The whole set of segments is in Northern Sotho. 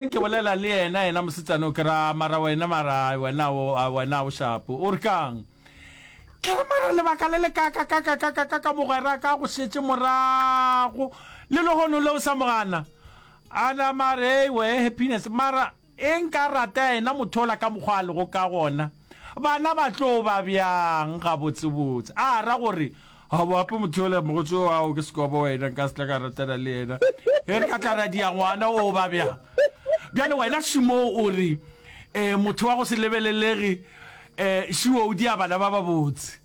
Ke bolela le yena, yena mosetsana o, ke ra, mara wena, mara wena o, a, wena o shapo. O re ka'ng? Ke re, mara lebaka le lekakakakakakaka, mogwera ka go šetše morago, le lehono le o sa mo gana. A nama a re, Eewe, Happiness, mara e nka rata yena motho ola ka mokgwa a lego ka gona. Bana ba tlo ba bjang gabotsebotse? A ra gore, Ga bo ape motho yola mogotse o ao ke sekobo wena, nka se tla ka ratana le yena. E re ka tla ra dia ngwana o ba bjang? Bjale wena Shimo o re, um, motho wa go se lebelelege, um, šiwo o dia bana ba babotse.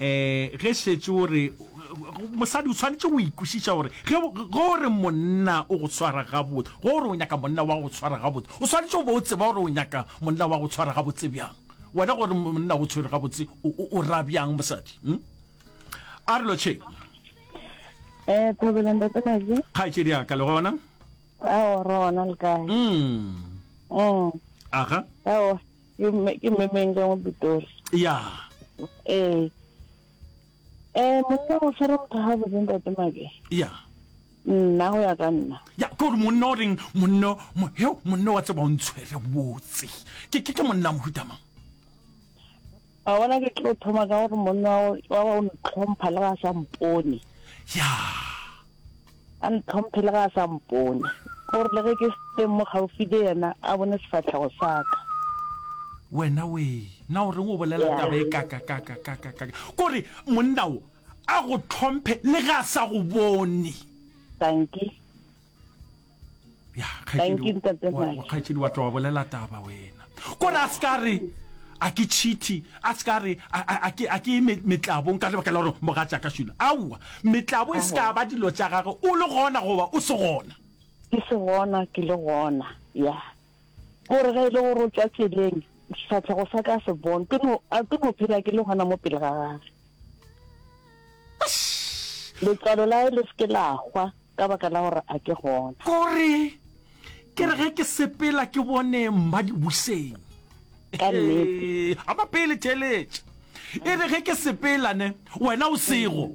Ee, ge šetše o re mosadi o tshwanetse go ikwešiša gore ge o re monna o go tshwara gabotse, ge o re o nyaka monna wa go tshwara gabotse, o swanetše go ba o tseba gore o nyaka monna wa go tshwara gabotse bjang. Wena gore monna go tshwere gabotse o ra bjang mosadi? Hm? A re lotšheng. Eh, Thobela ntate Kaje. Kgaetšedi ya ka le gona? Ao, re gona le kae? Mm. Mm. Aga. Ao. Ke mme ke mme Menga mo Pitori. Ya. Eh. Eh monna o tshwara motho ha botse ntate make. Ya. Nna go ya ka nna. Ya ke gore monna o reng monna mo he monna wa tseba o ntshwere botse. Ke ke ke monna mohuta mang? Wa bona, ke tlo thoma ka gore monna wa wa o ntlhompha le ga a sa mpone. Ya. A ntlhomphe le ga a sa mpone. Gore le ge ke se teng mo gaufi le yena, a bone sefatlhego sa ka. Wena wee, na o reng o bolela Ya. taba e kakakakakakaka? Kore monna wo a go tlhomphe le ge a sa go bone. Dankie. ya kgaetšedi wa tloga bolela taba wena kore a seka re a ke cheaty a seka re a ke metlabong ka lebaka la gore moga tša ka šula aowa metlabo e seka ba dilo tša gage o le gona goba o se gona ke se gona ke le gona ya O re, Ge e le gore o tšwa tseleng, sefahlego sa ka a se bone, ke no, a ke no phela ke le gona mo pele ga gage. Letlalo la hae le se ke la hwa ka baka la gore a ke gona. O re, Ke re ge ke sepela ke bone Mmadibuseng. Ka nnete. Ee, a ba pele theeletša. E re ge ke sepela ne, wena o sego.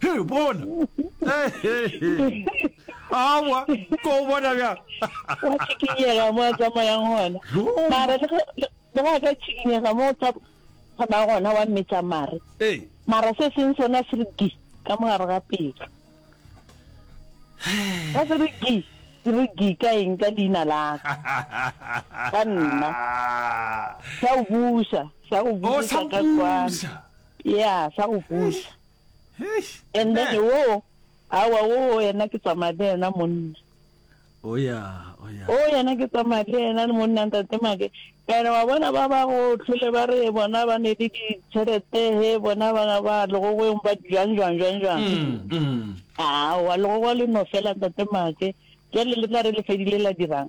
he bona awa ko o bona bjang wa tshikinyega mo a tsamayang gona mara le go a ka tshikinyega mo tsa tsamaya gona wa mmetsa mare mara se seng sona se re di ka mogare ga pelo ka se re di se re di ka eng ka leina laka ka nna sa o busa sa o busa ka kwana ya sa o busa Eish. And then wo awa wo yena ke tsamaya le yena monna. Oh yeah, oh yeah. Oh yena ke tsamaya le yena le monna ntate make. Ene wa bona ba ba go tlhole ba re bona ba ne di ditšhelete he bona ba ba legogweng ba jang jang jang jang. Mm, mm. Ah, wa legogo le no fela ntate make. Jale le tla re le fedile la dirang.